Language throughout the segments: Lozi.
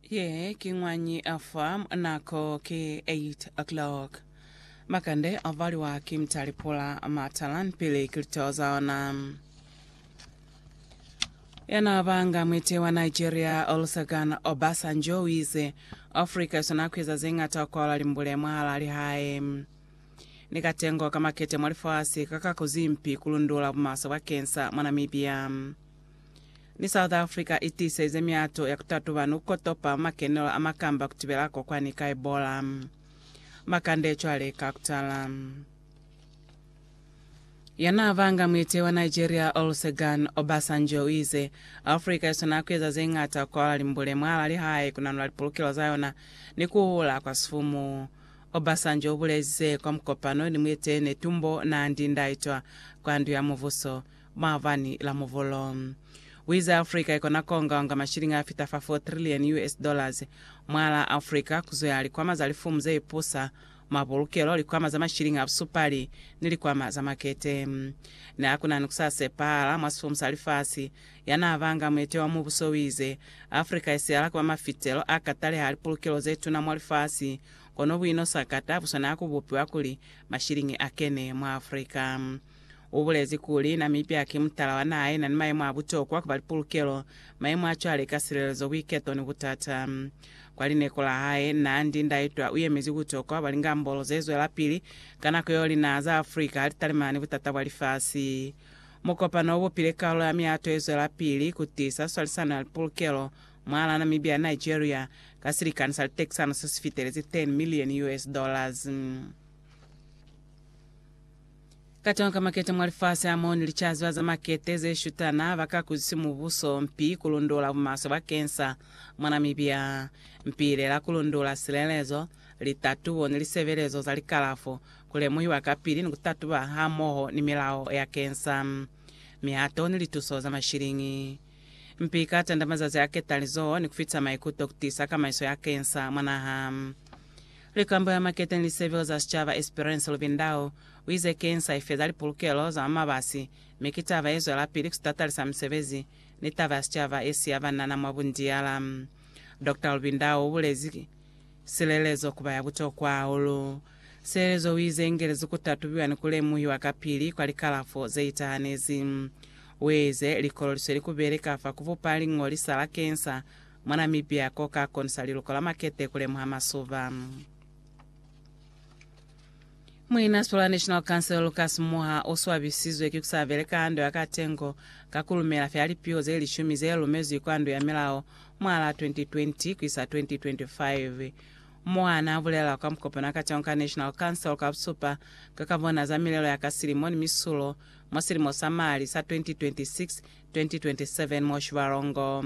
Ye ki ñwañi afa nako ki 8 o'clock. Makande a valiwa ki mtali pula matalan pili kilito zaona. Yana banga mwete wa Nigeria Olusegun Obasanjo wize Africa isona kwiza zengata ukola limbule mwala lihae. Ni katengo ka makete mwa lifasi kaka kuzimpi kulundula bumaso bwa kensa mwa Namibia. Ni South Africa i tiiselize miato ya ku tatuba ni ku kotopa makenelo a makamba ku tibela kokwani ka Ebola. Makande cwale ka ku tala. Ya naa banga muiteyi wa Nigeria Olusegun Obasanjo uize, Africa i swanela ku eza ze ñata ku kwala limbule mwaalaa lihae, ku nanula lipulukelo za yona ni ku hula kwa sifumu. Obasanjo ubulezi ze kwa mukopano ni muiteyi Netumbo Nandi-Ndaitwah kwa Ndu ya Mubuso, maabani la muvolo. Kuiza Africa ikona kuongaonga mashilingi afita fa 4 trillion US dollars mwaalaa Africa, kuzoya likwama za lifumu zeipusa, mapulukelo, likwama za mashilingi a busupali, ni likwama za makete. Neakuna ni kusasepahala mwa sifumu sa lifasi, yanaabanga muete wa mubuso uize, Africa isihala kuba mafitelo akataleha a lipulukelo zetuna mwa lifasi, kono buino sakata buswanela kubupiwa kuli mashilingi akene mwa Africa. Ubulezi kuli, Namibia ki mutala wa naha yena ni mayemo a butokwa ku ba li pulukelo, mayemo a cwale ka silelezo, buiketo ni butata. Kwa lineko la hae, Nandi Ndaitwah uyemezi butokwa bwa lingambolo ze zwelapili ka nako yeo linaha za Africa ha litalimana ni butata bwa lifasi. Mukopano ubupile kalulo ya mihato ye zwelapili ku tiisa swalisano ya lipulukelo mwahala Namibia ni Nigeria ka silikani sa litekisano se si fitelezi 10 million US dollars. Katonga ka makete mwa lifasi amoo ni licaziba za makete ze shutana ba ka kuzisi mubuso mpi ku lundola bumaswe bakeng sa mwa Namibia. Mpi ile la ku lundola silelezo, litatubo ni lisebelezo za likalafo, ku lemuhiwa kapili ni ku tatuba hamoho ni milao ya kensa, mihato ni lituso za mashiliñi. Mpi ka tanda mazazi a ketali zoo ni kufitisa maikuto kutisa kamaiso ya kensa mwa naha. Likambo ya Maketeng Lisebelo za Sicaba Esperance Lubindao uize kensa ifeza lipulukelo za mwa mabasi mi ki taba yezwelapili kusitatalisa misebezi ni taba ya sicaba yesiya banana mwa bundiyala. Doctor Lubindao ubulezi silelezo kuba ya butokwa hahulu. Sielezo u ize, Ingelezi ku tatubiwa ni ku lemuhiwa kapili kwa likalafo ze itahanezi. U eze likololiso li kubele ka fa ku bupa liñolisa la kensa mwa Namibia ko ka konisa liluko la makete ku lemuha masuba. Muinasibilo wa National Council Lucas Moha u swabisizwe ki ku sa beleka ha ndo ya katengo ka ku lumela fela lipiho ze lishumi ze lumezwi kwa Ndo ya Milao mwahalaa 2020 ku isa 2025. Moha n'a bulela kwa mukopano wa kacwalo ka National Council kwa busupa ka ka bona za milelo ya ka silimo ni misulo mwa silimo sa mali sa 2026-2027 mo Shibalongo.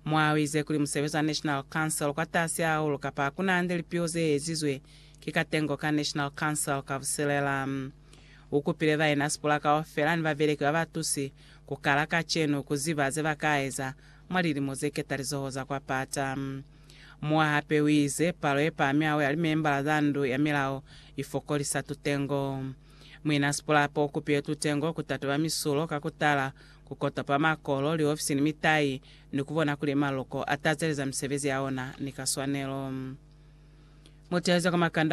Moha u ize kuli musebezi wa National Council kwa tasi hahulu kapa ha ku na hande lipiho ze ezizwe ki katengo ka National Council ka busilela. U kupile bainaspula kaufela ni babeleki ba ba tusi ku kala kacenu ku ziba ze ba ka eza mwa lilimo ze ketalizoho za kwa pata. Mu'a hape u ize, Palo ye pami hahulu ya limembala za Ndu ya Milao i fokolisa tutengo. Muina Sipulape u kupile tutengo ku tatoba misulo ka ku tala, ku kotopa makolo, liofisi ni mitai, ni ku bona kuli maloko a tazeleza misebezi ya ona ni ka swanelo. Muteezi wa kwa Makande